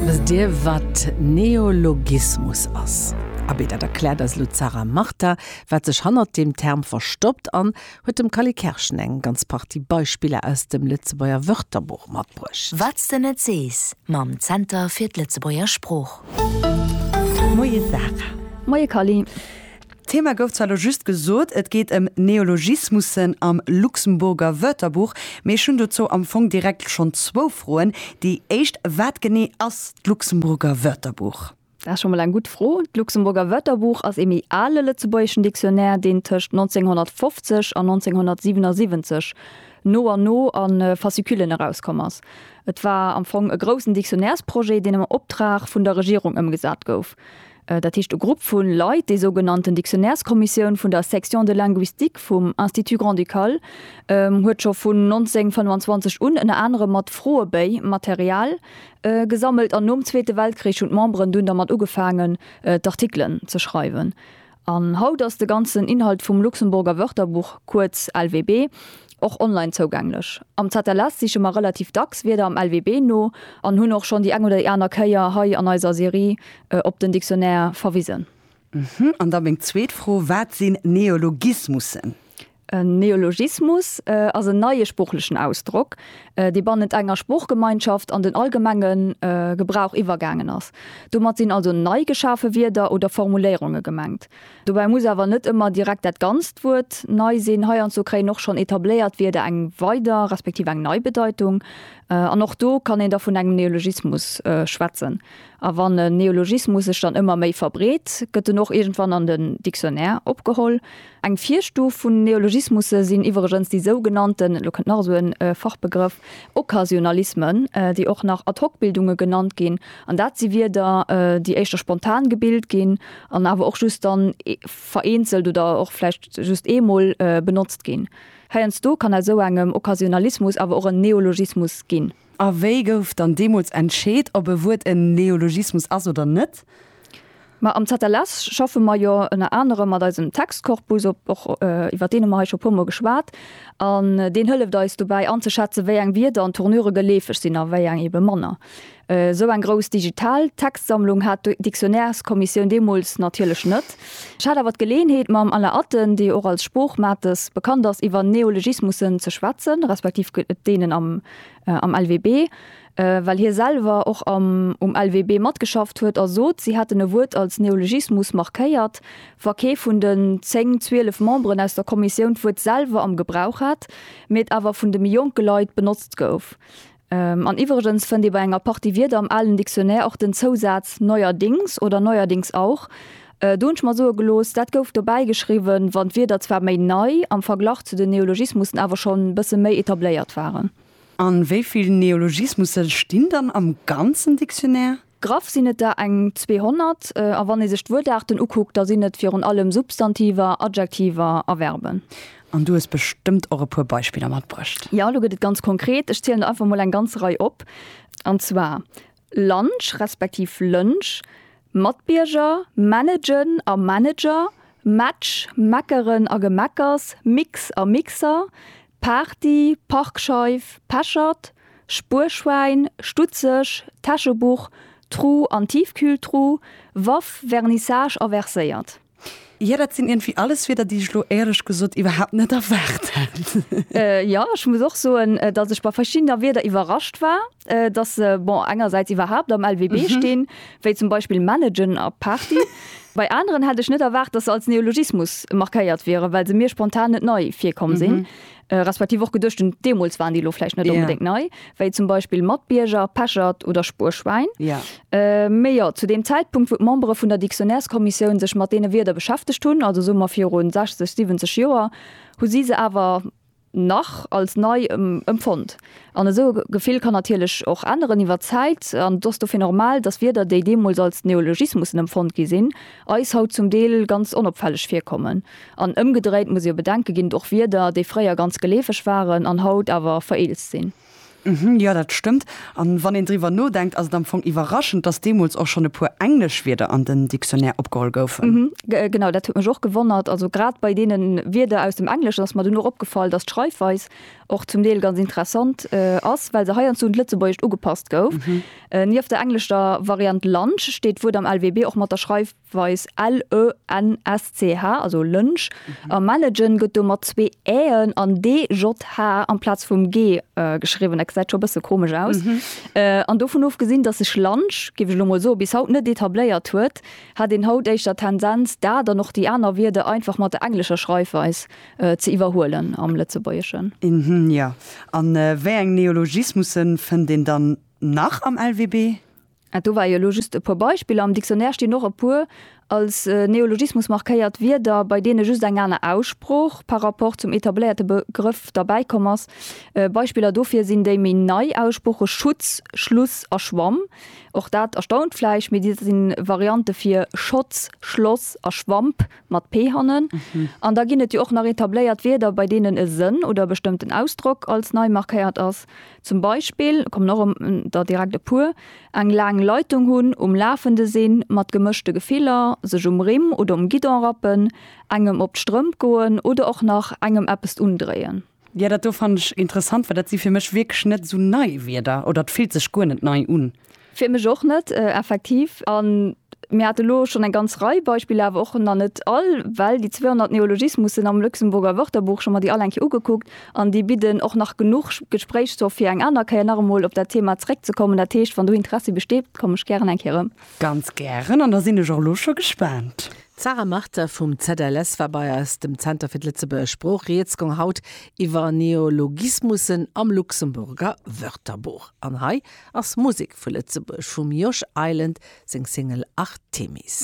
Wësst Dir, wat Neologismus ass? Abee, dat erkläert eis elo d'Sarah Martin, wat sech hannert deem Term verstoppt an huet dem Kally Kerschen eng ganz Partie Beispiller aus dem Lëtzebuerger Wörterbuch matbruecht. Wat s de net sees mam Zenter fir d'Lëtzebuerger Sprooch. Moie Sarah. Moie Kally. D'Thema gouf zwar elo just gesot, et geet ëm Neologismussen am Luxemburger Wörterbuch, mee ech hunn dozou am Fong direkt schonn zwou Froen. Déi éischt, Wat genee ass d'Luxemburger Wörterbuch? Dat ass scho mol eng gutt Fro. D'Luxemburger Wörterbuch ass ee méi ale lëtzebuergeschen Dictionnaire, deen tëscht 1950 an 1977 no an no a Fasciculen erauskomm ass. Et war am Fong e groussen Dictionnairesprojet, deen am Optrag vun der Regierung ëmgesat gouf. dat heescht e Grupp vu Leit, déi sougenannten Dictionnaireskommissioun vun der Section de linguistique vum Institut grand-ducal, huet scho vun 1925 un ënner anerem mat Froebéi Material gesammelt. An nom Zweete Weltkrich hunn d'Memberen dunn dermat ugefaangen, d'Artikelen ze schreiwen. An haut ass de ganzen Inhalt vum Luxemburger Wörterbuch, kuerz LWB, och online zougänglech. Am ZLS siche mer relativ dacks Wierder am LWB no an hunn och schonn déi eng oder déi aner Kéier hei an eiser Serie op den Dictionnaire verwisen. An da meng zweet Fro, Wat sinn Neologismussen? En Neologismus ass en neie sproochlechen Ausdrock, dee bannent enger Sproochgemeinschaft an den allgemenge Gebrauch iwwergaangen ass. Domat sinn also nei geschafe Wierder oder Formuléierunge gemengt. Dobäi muss awer net ëmmer direkt dat ganzt Wuert nei sinn. Heiandsdo kréien och schonn etabléiert Wierder eng weider respektiv eng nei Bedeitung. An och do kann een da vun engem Neologismus schwätzen. A wann en Neologismus sech dann ëmmer méi verbreet, gëtt en och iergendwann an den Dictionnaire opgeholl. Eng Virstuf vun Neologismusse sinn iwweregens déi sougenannten, elo kënnt nach esou e Fachbegrëff, Occasionalismen, déi och nach Ad-hoc-Bildunge genannt ginn. An dat si Wierder, déi éischter spontan gebilt ginn an awer och just dann vereenzelt oder och vläicht just eemol benotzt ginn. Heiansdo kann aus esou engem Occasionalismus awer och en Neologismus ginn. A wéi gouf dann deemools entscheet, ob e Wuert en Neologismus ass oder net? Ma am ZLS schaffe mer jo ënner anerem mat eisem Textkorpus, och iwwer deen hu mer hei scho e puermol geschwat, an deen hëlleft eis dobäi anzeschätzen, wéi eng Wierder an Tournure geleefeg sinn a wéi eng eebe manner. Esou eng grouss digital Textsammlung hat d'Dictionnaireskommissioun deemools natierlech net. Ech hat awer d'Geleeënheet mam Alain Atten, dee och als Sproochmates bekannt ass, iwwer Neologismussen ze schwätzen, respektiv deenen am LWB, well hie selwer och am um LWB matgeschafft huet a sot, si hätten e Wuert als Neologismus markéiert, wa kee vun den zéng, zwielef Memberen aus der Kommissioun d'Wuert selwer am Gebrauch hat, mee et awer vun de méi jonke Leit benotzt gouf. An iwwregens fënnt ee bei enger Partie Wierder am alen Dictionnaire och den Zousaz neuerdings oder neuerdings auch. Do hunn ech mer soe gelooss, dat gouf dobäi geschriwwen, wann d'Wierder zwar méi nei, am Verglach zu den Neologismussen awer schonn e bësse méi etabléiert waren. A wéi vill Neologismusse stinn dann am ganzen Dictionnaire? Graff sinn et der eng 200, a wann ee sech d'Wuertaarten ukuckt, da sinn et virun allem Substantiver, Adjektiver a Verben. An du hues bestëmmt och e puer Beispiller matbruecht? Jo, elo gëtt et ganz konkret. Ech zielen der einfach mol eng ganz Rei op. An zwar lunch respektiv lënsch, Matbierger, managen a Manager, Match, meckeren a Gemeckers, Mix a Mixer, Party, Parkscheif, Pechert, Spuerschwäin, Stutzeg, Täschebuch, Tru an Tiefkühltru, Waff, Vernissage a Verséiert. Jo, dat sinn iergendwéi alles Wierder, déi ech elo éierlech gesot iwwerhaapt net erwaart hat. Jo, ech muss och soen, dass ech bei verschiddener Wierder iwwerrascht war. dass se bon engersäits iwwerhaapt am LWB stinn, wéi zum Beispill managen a Party. Bei aneren hätt ech net erwaart, dass se als Neologismus markéiert wieren, well se mir spontan net nei virkomm sinn, respektiv och geduecht hunn, deemools waren déi elo vläicht net onbedéngt nei, wéi zum Beispill Matbierger, Pechert oder Spuerschwäin. Mee jo, zu deem Zäitpunkt, wou d'Membere vun der Dictionnaireskommissioun sech mat deene Wierder beschäftegt hunn, also soe mer virun 60, 70 Joer, hu si se awer nach als nei empfonnt. An esou e Gefill kann natierlech och änneren iwwer d'Zäit. An et ass dofir normal, dass Wierder, déi deemools als Neologismussen empfonnt gi sinn, eis haut zum Deel ganz onopfälleg virkommen. An ëmgedréit muss ee jo bedenke ginn, och Wierder, déi fréier ganz geleefeg waren an haut awer vereelzt sinn. Jo, dat stëmmt. A wann een driwwer nodenkt, ass et am Fong iwwerraschend, dass deemools och schonn e puer englesch Wierder an den Dictionnaire opgeholl goufen. Genau, dat huet mech och gewonnert. Also grad bei deene Wierder aus dem Engleschen ass mer dunn och opgefall, dass d'Schreifweis och zum Deel ganz interessant ass, well se heiansdo un d'Lëtzebuergescht ugepasst gouf. Nieft der englescher Variant lunch steet d'Wuert am LWB och mat der Schreifweis. weis LENSCH, also Lënsch, a Managen gëtt do mat zwee Äen an DJH amplaz vum G geschriwwen. Dat gesäit scho e bësse komesch aus. An dovun ofgesinn, datt sech Lunch, géif ech elo mol soen, bis haut net etabléiert huet, hätt een haut éischter d'Tendenz, dat an och déi aner Wierder einfach mat der englescher Schreifweis ze iwwerhuelen am Lëtzebuergeschen. Mhmm, jo. A wéi eng Neologismusse fënnt een dann nach am LWB? Ah, do war jo elo just e puer Beispiller. Am Dictionnaire stinn och e puer als Neologismus markéiert Wierder, bei deene just eng aner Aussprooch par rapport zum etabléierte Begrëff derbäi komm ass. Beispiller dofir sinn déi méi nei Aussprooche Schutz, Schluss a Schwamm. Och dat erstaunt vläicht, mee dat si Variante fir Schotz, Schloss a Schwamp mat p hannen. An da ginn et jo och nach etabléiert Wierder, bei deenen e Sënn oder e bestëmmten Ausdrock als nei markéiert ass. Zum Beispill, kommen och em der direkt e puer, eng laang Leitung hunn, um Lafende sinn, mat gemëschte Gefiller, sech um Rimm oder um Guidon rappen, engem op d'Strëmp goen oder och nach engem eppest undréien. Jo, dat do fannen ech interessant, well dat si fir mech wierklech net esou nei Wierder, oder et fillt sech guer net nei un. Fir mech och net, effektiv. A mir hate elo schonn eng ganz Rei Beispiller, awer och nach net all, well déi 200 Neologismussen am Luxemburger Wörterbuch, ech hu mer déi all eng Kéier ugekuckt an déi bidden och nach genuch Gespréichsstoff fir eng aner Kéier nach emol op dat Thema zréckzekommen. Dat heescht, wann do Interessi besteet, komme ech gären eng Kéier erëm. Ganz gären. An da sinn ech och elo scho gespaant. D'Sarah Marter vum ZLS war bei eis, dem Zenter fir d'Lëtzebuerger Sprooch. Rieds goung haut iwwer Neologismussen am Luxemburger Wörterbuch. An hei ass Musek vu Lëtzebuerg vum Josh Island seng Single Artemis.